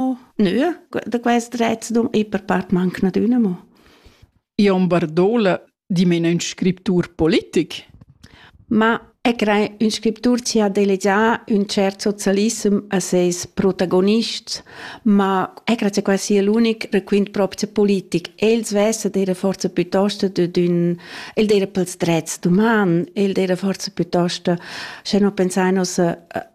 Nö, da quest rez dum e per part manc nadüna mo. Jon Bardola, dimena ün scriptur politic? Ma e crei ün scriptur ci ha delegià ün cert socialissem a seis protagonists, ma è grazie qua sia l'unic requint proprio politic. Els vesse dera forza piuttosto d'ün el dera pels drets d'uman, el dera forza piuttosto, se no pensainos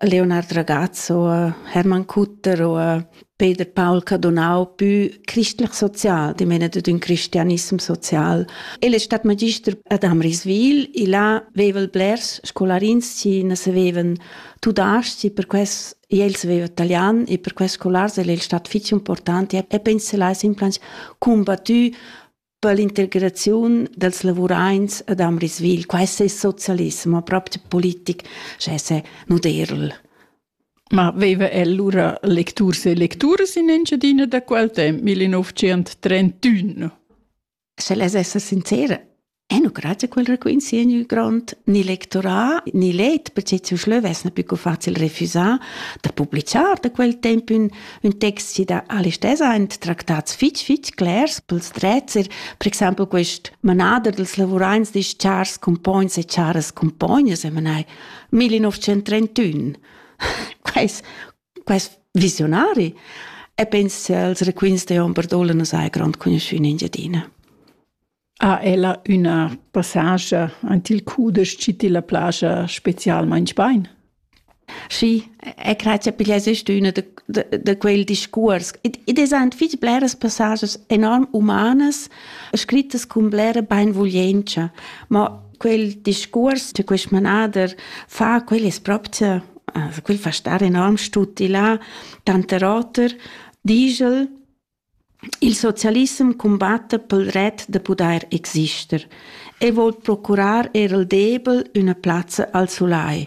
Leonard Ragazzo, Hermann Kutter oder Peter Paul Cadonau più christlich-sozial, die meinen den Christianismus sozial. El è stato magister ad Amriswil, e là avevan blers scolarins che non sapevano tudaschi, per questo el sapeva italiano e per questo scolars è stato fitch importante e penso là sempre combattu per l'integraziun dels lavuraints ad Amriswil. Questo è socialismo, proprio politic, cioè se nuderl. Ma veva el lura lecturs e lecturas in Engiadina da quel temp, 1931? Se les essa sincera, E nu grazie quel requint si in grond ni lectorat ni let, perché ci schleu vesna più facil refusar da publicar da quel temp ün ün text da Alistair aint tractats fich fich clers pels drezzer, per exaimpel quist manader dels lavuraints disch chars compogns e charas compognas e manai 1931. quais, quais visionari. E penso als requins de hom Bardola nos hai grand conosciun in Giadina. ha ella üna passascha ant il cudesch chi tilla plascha specialmaing bain. Sì, e crede che piglia ist üna da quel discurs. Id es ant fich bleras passages enorm umanas, scrittas cun blera bainvuglientscha, ma quel discurs di quest manader fa quel es proprio also quel fa star enorm stuti là, tanter oter, digel Il socialissem cumbatta pel ret da pudair exister e voul procurar eir al debel üna plazza al sulai.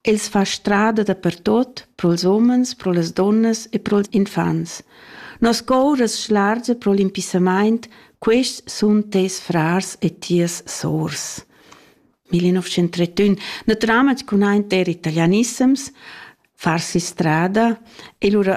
Els fa strada dapertot, pro'ls umens, pro las dunnas e pro'ls infants. Nos cour as schlargia pro l'impissamaint, quists sun teis frars e tias sours. 1931 Natüralmaing cun aint der italianissems, farsi strada e lura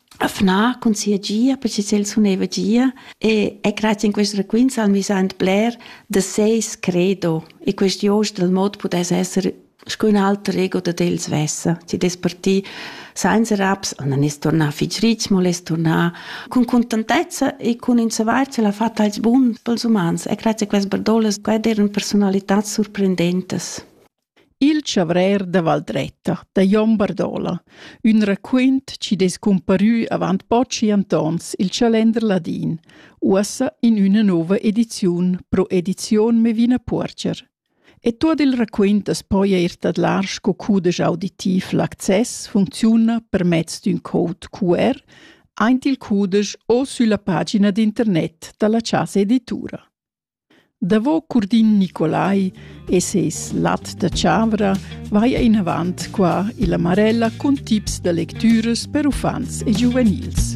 afnar cun sia gia perche ch'el suneva gia e e grazia in quest raquints han vis aint bler da seis credo e quest jost dal mod pudess esser sco ün alter ego dad el svessa. Chi dess partir sainza raps, non es tornà fich rich, mo l'es tornà cun contentezza e cun ün savair ch'el ha fat als bun pels umans e grazie a quest bardolas, quai d'eran personalitats surprendentas. Il chavrer da Valdretta da Jon Bardola, ün raquint chi dess cumparü avant pochi antons i'l Chalender ladin, uossa in üna nouva ediziun pro edizion Mevina Puorger. E tuot il raquint as poja ir tadlar sco cudesch auditiv. L'access funcziuna per mezz d'ün code QR aint il cudesch o sülla pagina d'internet da la Chasa Editura. Davo Curdin Nicolai e ses lat da chavra vaia inavant qua illa Marella cun tips da lectüras per uffants e giuvenils.